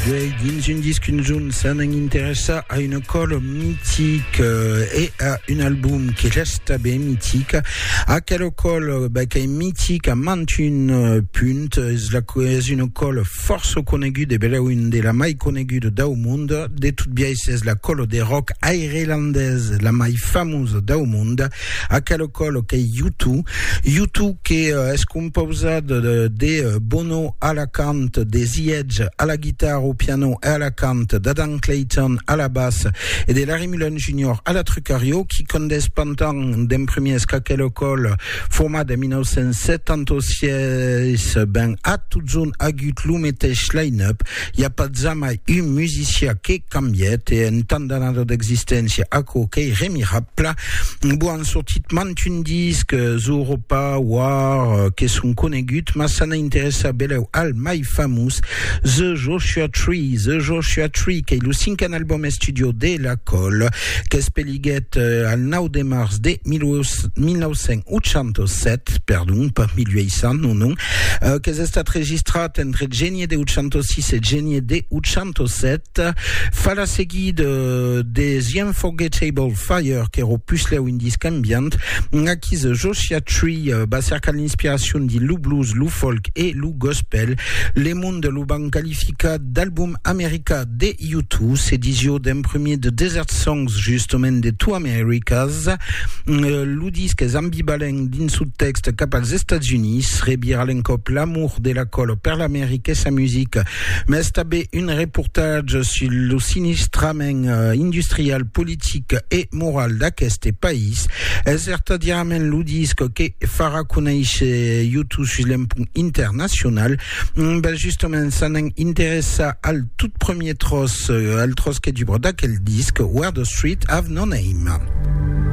Guei dins un disc un zon s'an an interessa a una còla mitic e a un album que resta ben mitic. Aquela còla ben, qu'ei mitic a mantun punt, es, la, es una còla fòrça coneguda e belèu un de la mai coneguda dau mond. De tot biais es la còla de rock airelandesa la mai famosa dau mond. A quel còl qu'ei Yutu, Yutu que es compausat de Bono a la cant, de The Edge a la guitarra, au piano e a la cant, d'Adam Clayton a la bas e de Larry Mullen Junior a la trucariò, qui condés pantan d'en premiers qu'aquel còl, format en 1976, ben a totjorn agut lo meteis line-up, I a pas jamai un musician que cambièt e en tant d'anada d'existéncia aquò qu'ei remirabla. Bon, an sortit mantun disc, Zooropa, War, que son coneguts, mas s'an a interessar belèu al mai famós, The Joshua Tree, The Joshua Tree, qu'ei lo cinquen album estudio de La Colle, qu'es Siguèt al 9 de març de 1987, perdon, pas 1800, non, non, euh, qu'es estat registrat entre genie de 806 e genie de 807, fa la seguida euh, de The Unforgettable Fire, qu'èra au puslèu un disc ambient, aquí The Joshua Tree euh, va cercar l'inspiracion dins lo blues, lo folk e lo gospel. Le monde lo van qualificar d'album americà. De U Two, s'ediciò d'un premier de Desert Songs, justement de Two Americas. Lo disc es ambivalent dins su tèxt cap als Estats Units, revira l'encòp l'amor de la color per l'America e sa musica, mas tanben un reportatge sus lo sinistrament industrial, politic e moral d'aqueste país. Es vertadièrament lo disc que farà conéisher U Two sus l'empunt internacional. Ben justement, ça n'en interessa al tout premier tros, al tros que dubra d'aquel disc, Where the Street Have No Name.